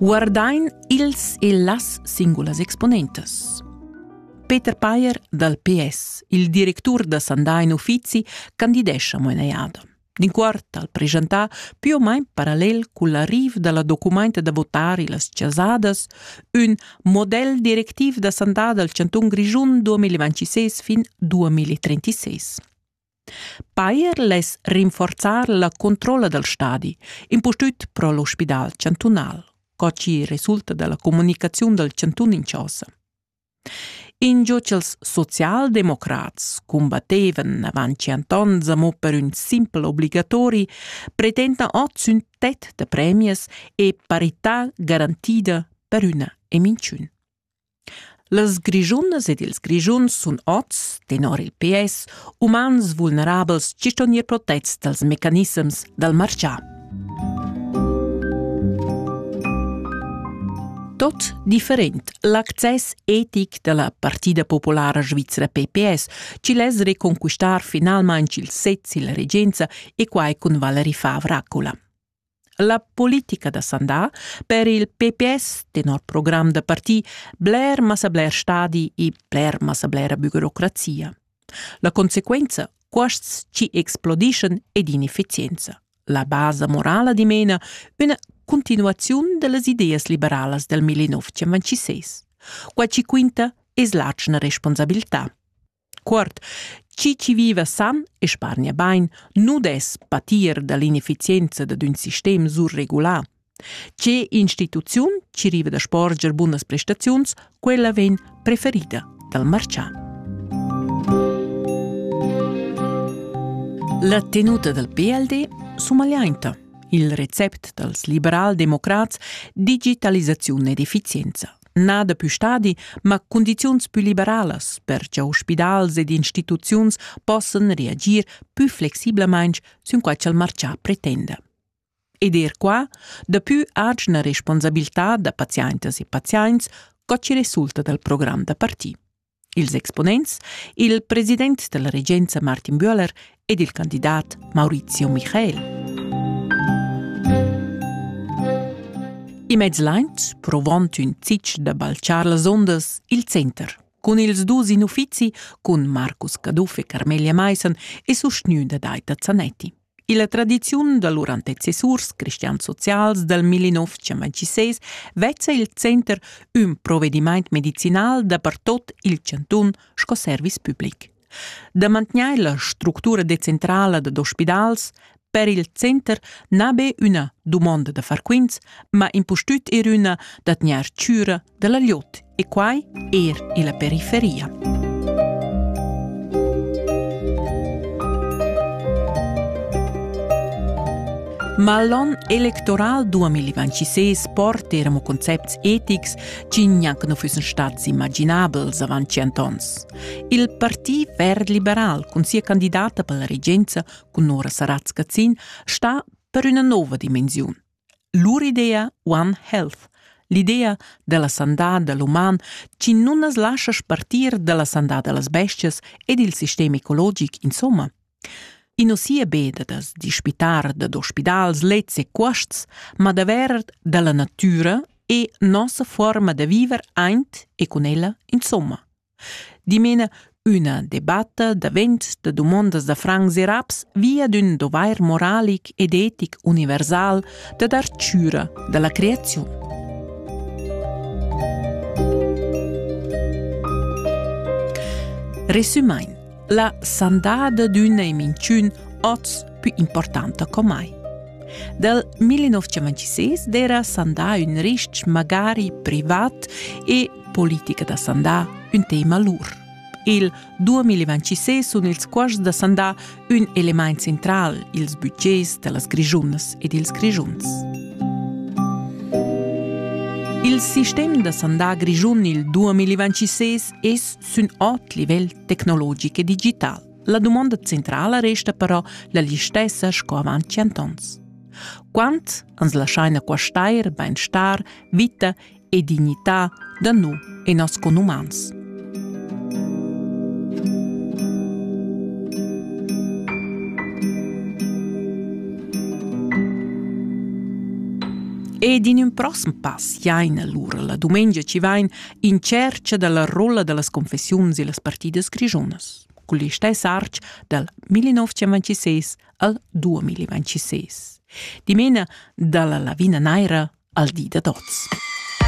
guardain ils e las singulas exponentas. Peter Payer dal PS, il directur da Sandain Uffizi, candidescha mo in eada. D'inquort al presentar più o meno parallel con l'arrivo della documenta da votare las chasadas, un model directiv da sandà dal Chanton Grischun 2026 fin 2036. Bayer less rinforzar la controlla dal stadi, impustüt pro l'ospidal chantunal, co chi resulta da la comunicaziun dal chantun in chosa. Ingio ch'els socialdemocrats combattevan avant tschient ons amo per ün simpel obligatori, pretendan ot sün tet da premias e parità garantida per üna eminciun. Las Grischunas ed ils Grischuns sun oz, tenor il PS, umans vulnerabels gist on ir protets dals mecanissems dal marchà. Tot different l'access etic da la Partida Populara Svizra PPS ci less reconquistar finalmain il sez illa regenza e quai cun Valeri Favra Raccola. La politica da Sandà per il PPS, tenor program da parti, bler massa bler stadi e bler massa blera burocrazia. La conseguenza, cuosts ci explodiscen ed inefficienza. La basa morala dimena una continuazione delle ideas liberalas del 1956. Qua ci quinta es l'atschna responsabilità. Cuort, chi chi viva san e spargna bain, nu dess patir da l'inefficienza dad ün sistem surregulà. Che instituziun chi riva da sporger bunas prestaziuns, quella vegn preferida dal marchà. La tenuta dal PLD sumagliainta. Il recept dals liberal-democrats digitalisaziun ed efficienza nà daplü stadi, ma cundiziuns pü liberalas, per cha ospidals ed instituziuns possan reagir pü flexibelmaing sün quai cha'l marchà pretenda. Ed eir qua, daplü atgna responsabiltà da paziaintas e paziaints, co chi resulta dal program da parti. Ils exponents, il president dalla regenza Martin Bühler ed il candidat Maurizio Michael. In mez laint provont ün zic da balchar las ondas il center. Cun ils dus in uffizi, cun Marcus Caduff e Carmelia Maissen e sustgnü da Daita Zanetti. Illa tradiziun da lur antecessurs cristian-socials dal 1926 vezza il center ün provedimaint medicinal dapertot il chantun sco service public. Da mantgnair la structura decentrala dad ospidals per il center n'ha be üna dumonda da far quints, ma impustüt er üna da tgnair chüra da la liot e quai er illa periferia. Ma l'on electoral 2026 porta eramo concepts etics chi gnanc nu füssen stats immaginabels avant tschient ons. Il Parti Verd Liberal cun sia candidata per la regenza, cun Nora Saratz-Cazin, sta per üna nouva dimensiun. Lur idea One Health, l'idea dalla sandà da l'uman chi nun as lascha spartir dalla sandà da las bestias e dil sistem ecologic insomma. I nu sia be da da's dispitar dad ospidals, lets e cuosts, ma davver da la natüra e nossa fuorma da viver aint e cun ella insomma. Dimena üna debatta davent da dumondas da francs e raps via d'ün dovair moralic ed etic universal da dar chüra da la creaziun. Resumain, la sandada d'üna e minchün oz pü importanta co mai. Dal 1926 d'era sandà ün rich magari privat e politica da sandà, ün tema lur. Il 2026 sun ils cuosts da sandà ün elemaint central ils budgets da las Grischunas ed ils Grischuns. Il sistem da sandà grischun il 2026 es sün ot livel tecnologic e digital. La dumonda centrala resta però la listessa sco avant tschient ans. Quant ans laschaina quastair bainstar, vita e dignità da no e nos conumans. Ed in ün prossem pass jain allura la dumengia ci vain in cerca dalla rolla da las confessiuns e las partidas grigiunas, cul istess arch dal 1926 al 2026. Dimena dalla lavina naira al di da tots.